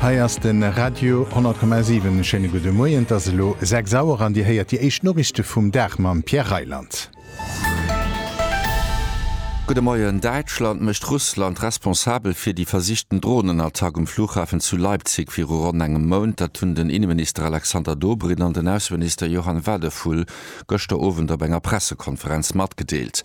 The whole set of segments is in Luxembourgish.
Hei ass de Radio 10,7. E schéine gudde Moien. Et ass elo 6 Auer an Dir héiert déi éischt Noriichte vum Dag mam Pierre Reyland. Gudde Moien, Däitschland mécht Russland responsabel fir déi versichten Dronenattack um Flughafen zu Leipzig viru ronn engem Mount. Dat hunn den Inneminister Alexander Dobrindt an den Ausseminister Johann Wadephul gëschter Owend op enger Pressekonferenz matgedeelt.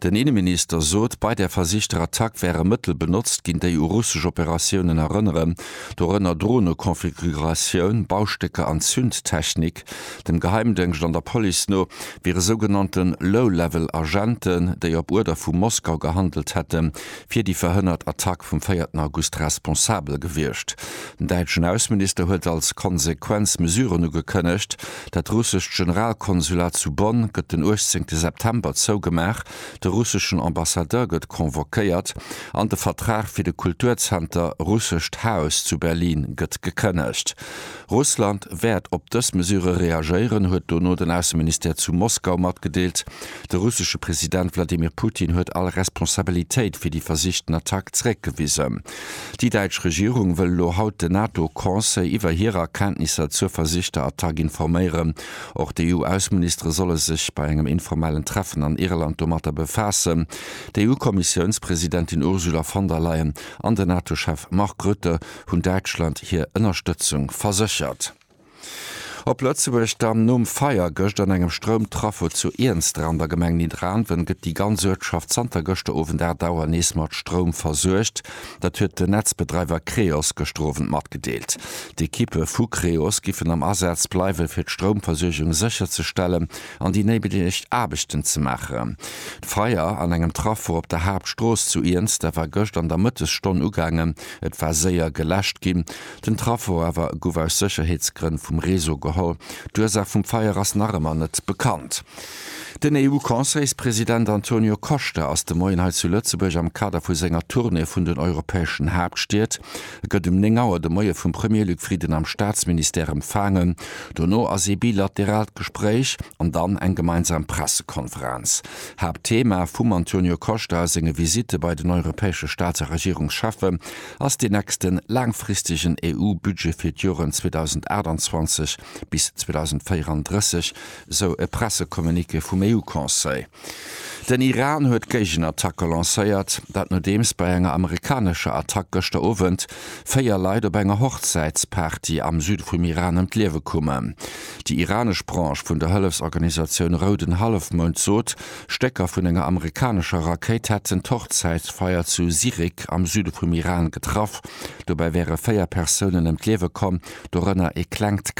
Den Inneminister sot, bei der versichter Attack wäre Mëttel benotzt ginn, déi u russesch Operatiounen erënneren, dorënner Dronekonfiguratioun, Baustécker an Zündtechnik. Dem Geheimdëngscht an der Police no wiere sougenannte Low-Level Agenten, déi op Uerder vu Moskau gehandelt hätten, fir déi verhënnert Attack vum véierten August responsabel gewiescht. Den däitschen Ausseminister huet als Konsequenz Mesuren ugekënnegt, Dat russescht Generalkonsulat zu Bonn gëtt den 18 September zougemaach, de russeschen Ambassadeur gëtt convoquéiert an de Vertrag fir de Kulturzenter Russescht Haus zu Berlin gëtt gekënnegt. Russland wäert op dës Mesure reagéieren, huet dono den Ausseministère zu Moskau matgedeelt. De russesche President Wladimir Putin huet all Responsabilitéit fir déi versichten Attack zeréckgewisen. Déi däitsch Regierung wëll elo haut den NATO-Conseil iwwer hir Erkenntnisser zur versichter Attack informéieren. Och d'EU-Ausseministere solle sech bei engem informellen Treffen an Irland domatter befaassen. D'EU-Kommissiounspresidentin Ursula von der Leyen an den NATO-Chef Mark Rutte hunn Däitschland hir Ënnerstëtzung verséchert. Op Lëtzebuerg dann, Nom Feier gëscht an engem Stroumtraffo zu Iernster an der Gemeng Nidderaanwen, gëtt déi ganz Uertschaft zanter gëschter Owend 8 Auer nees mat Stroum versuergt. Dat huet den Netzbedreiwer Creos gëschter Owend matgedeelt. D'Ekippe vu Creos giffen am Asaz bleiwe fir d'Stroumversuergung sécherzestellen an déi néideg Aarbechten ze maachen. D'Feier an engem Traffo op der Haaptstrooss zu Iernster war gëscht an der Mëttesstonn ugaangen. Et war séier geläscht ginn. Den Traffo awer gouf aus Sécherheetsgrënn vum Réseau geholl. D'Ursaach vum Feier ass nach ëmmer net bekannt. Den EU-Conseilspresident Antonio Costa ass de Moien hei zu Lëtzebuerg am Kader vu senger Tournée vun den europäeschen Haaptstied. E gëtt um 9 Auer de Moie vum Premier Luc Frieden am Staatsministère empfaangen. Dono ass ee bilateraalt Gespréich an dann eng gemeinsam Pressekonferenz. Haaptthema vum Antonio Costa a senge Visitte bei den europäesche Staats a Regierungscheffe ass dee nächste laangfristegen EU-Budget fir d'Joren 2028 bis 2034, sou e Pressecommuniqué vum EU-Conseil. Den Iran huet d'Géigenattacke lancéiert, dat nodeems bei enger amerikanescher Attack gëschter Owend véier Leit op enger Hochzäitsparty am Süde vum Iran ëm d'Liewe koumen. Déi iranesch Branche vun der Hëllefsorganisatioun Rouden Hallefmound sot, Stécker vun enger amerikanescher Rakéit hätten d'Hochzäitsfeier zu Sirik am Süde vum Iran getraff. Dobäi wäre véier Persounen ëm d'Liewe komm, dorënner ee klengt Kand.